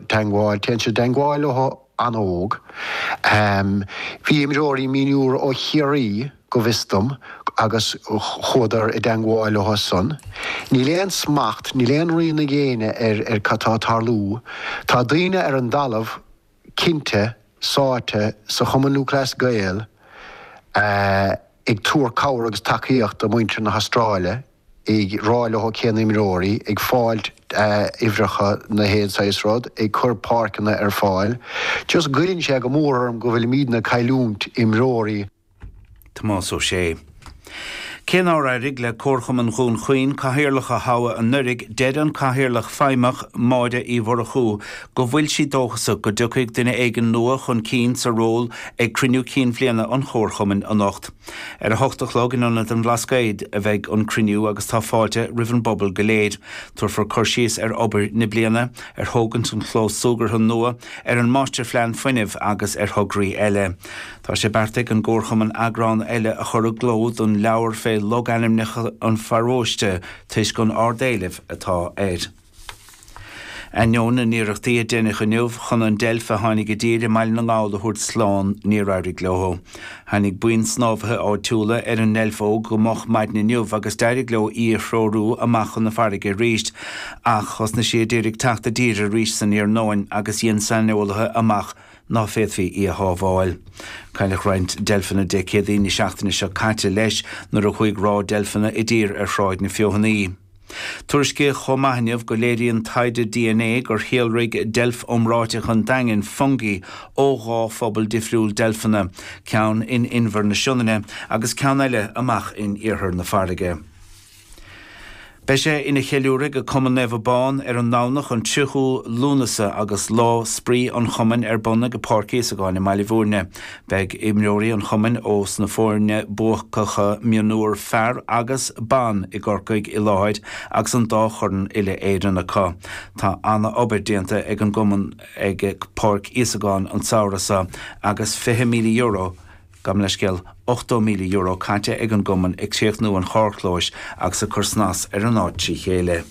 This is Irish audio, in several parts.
Teangmháil, Téann siad i dteangmháil leothu an-óg. Bhí imreoirí mionúir ó Chiarraí, go bhfios dom, agus chuadar i dteangmháil leothu san. Níl aon smacht, níl aon rian á dhéanamh ar cad tá ag tarlú. Tá daoine ar an dtalamh, cinnte, sáite sa Chumann Lúthchleas Gael ag tabhairt cabhair agus tacaíocht do muintir na hAstráile, ag rá leothu cén imreoirí, ag fáilt uimhreacha na haon saghas rud, ag cur páirceanna ar fáil. Just goilleann sé go mór orm go bhfuilimidne ag cailliúint imreoirí. Tomás Ó Sé. Cé nár éirigh le Comharchumann Dhún Chaoin cathaoirleach a thoghadh anuraidh, deir an cathaoirleach feidhmeach, Máire Uí Mhurchú, go bhfuil sí dóchasach go dtiocfaidh duine éigin nua chun cinn sa ról ag cruinniú cinn bhliana an Chomharchumainn anocht. Ar a hocht a chlog in Ionad an Bhlascaoid a bheidh an cruinniú agus tá fáilte roimh an bpobal go léir. Tabharfar cur síos ar obair na bliana, ar thógaint an chlós súgartha nua, ar an máistirphlean fuinnimh agus ar thograí eile. Tá sé beartaithe ag an gComharchumann eagrán eile a chur i gcló don leabhar fé logainmneacha an pharóiste toisc an ard-éileamh atá air. Ainneoin na n-iarrachtaí a deineadh inniu chun an deilf a tháinig i dtír i mBaile na nGall a thabhairt slán, níor éirigh leo. Tháinig buíon snámhaithe áitiúla ar an ndeilf óg go moch maidin inniu agus d'éirigh leo í a threorú amach chun na farraige arís, ach thosnaigh sí a d'iarraidh teacht i dtír arís san iarnóin agus dhein saineolaithe amach ná féadfaí í a shábháil. Cailleadh roinnt deilfeanna Dé Céadaoin na seachtaine seo caite, leis, nuair a chuaigh ráth deilfeanna i dtír ar Thráigh na Feothanaí. Tuairiscíodh chomh maith inniu go léiríonn taighde DNA gur shíolraigh deilf iomráiteach an Daingin, Fungi, ó dhá phobal difriúil deilfeanna, ceann in Inbhear na Sionainne agus ceann eile amach in iarthar na farraige. Beidh sé ina cheiliúradh ag Cumann Naomh Abán ar an nDomhnach an 30ú Lúnasa agus Lá Spraoi an Chumainn ar bun acu ag Páirc Íosagáin i mBaile Bhúirne. Beidh imreoirí an chumainn ós na foirne buacacha mionúir fear agus ban i gCorcaigh i láthair agus an dá chorn uile-Éireann acu. Tá ana-obair déanta ag an gcumann ag Páirc Íosagáin an samhradh seo agus €20,000, gabh mo leithscéal, €80,000, caite ag an gcumann ag críochnú an charrchlóis agus ag cur snas ar an áit trí chéile.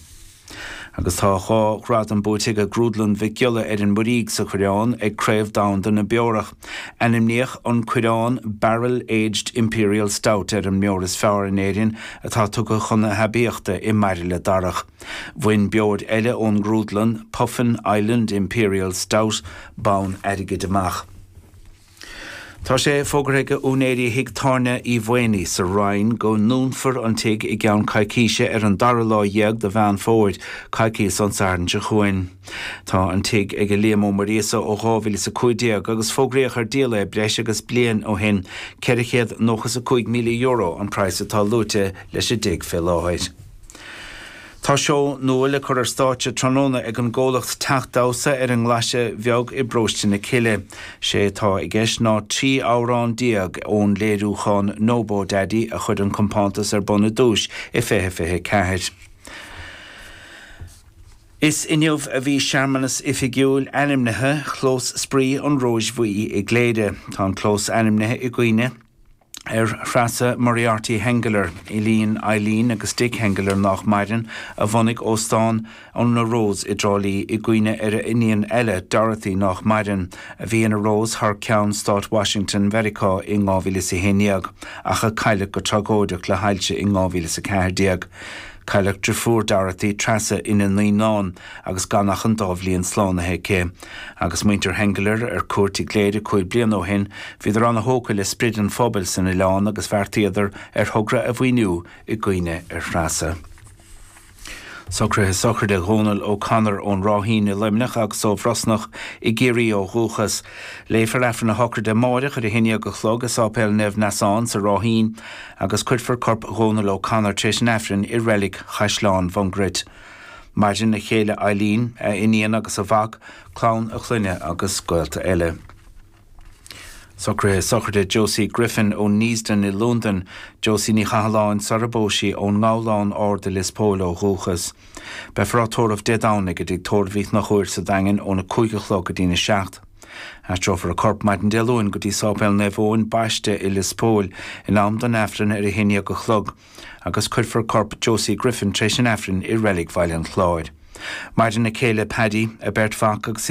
agus tá dhá ghradam buaite ag Grúdlann Mhic Giolla ar an Muirígh sa Choireán ag Craobh Domhanda na Beorach. Ainmníodh an Coireán Barrel Aged Imperial Stout ar an mbeoir is fearr in Éirinn atá tugtha chun a haibíochta i mbairille darach. Bhain beoir eile ón ngrúdlann, Puffin Island Imperial Stout, bonn airgid amach. Tá sé fógartha ag úinéirí Thigh Tábhairne Uí Mhaonaigh sa Rinn go ndúnfar an tigh i gceann coicíse ar an dara lá dhéag de Mheán Fómhair, coicíos ón Satharn seo chugainn. Tá an tigh ag Liam Ó Muiríosa ó 2015 agus fógraíodh ar díol é breis agus bliain ó shin. Ceithre chéad nócha is a cúig míle euro an praghas atá luaite leis an dtigh fé láthair. Tá seó nua le cur ar stáitse tráthnóna ag an gcomhlacht Teach Damhsa ar an nGlaise Bheag i bParóiste na Cille. Sé atá i gceist ná 13 amhrán ón léiriúchán Nobodaddy a chuir an compántas ar bun ar dtúis i 2024. Is inniu a bhí searmanas oifigiúil ainmnithe Chlós Spraoi an Róis Bhuí i gCléire. Tá an clós ainmnithe i gcuimhne. ar Threasa Moriarty Henggeler, iníon Eibhlín agus Dick Henggeler, nách maireann, a bhunaigh Óstán na Rós i dTrá Lí i gcuimhne ar a iníon eile, Dorothy, nách maireann, a bhí ina Rose thar ceann Stáit Washington Mheiriceá in 2011, ach a cailleadh go tragóideach le hailse in 2014. Cailleadh driofúr Dorothy, Treasa, ina naoínán agus gan ach an dá bhliain slánaithe aici. Agus muintir Henggeler ar cuairt i gCléire cúig bliana ó shin, bhíodar an-tógtha le sprid an phobail san oileán agus bheartaíodar ar thogra a mhaoiniú i gcuimhne ar Threasa. Socruithe sochraide Dhónal O'Connor ón Ráithín i Luimneach agus ó Bhrosnach i gCiarraí ó dhúchas. Léifear Aifreann a shochraide amáireach ar a haon dhéag a chlog i Sáipéal Naomh Neasán sa Ráithín agus cuirfear corp Dhónal O'Connor tar éis an Aifrinn i Reilig Chaisleán Mhungairit. Maireann a chéile Eileen, a iníon agus a mhac, clann a chlainne agus gaolta eile. Socruithe sochraide Josie Griffin ó Neasden i Londain, Josie Ní Chathalláin, sarar phós sí ón nGabhlán Ard i Lios Póil ó dhúchas. Beifear á tórramh Dé Domhnaigh i dTigh Tórraimh Uí Chonchúir sa Daingean óna cúig a chlog go dtí'n a seacht. Aistreofar a corp maidin Dé Luain go dtí Sáipéal Naomh Eoin Baiste i Lios Póil in am don Aifreann ar a haon déag a chlog. agus cuirfear corp Josie Griffin tar éis an Aifrinn i Reilig Bhaile an Chláir. Maireann a céile Paddy, a beirt mhac agus a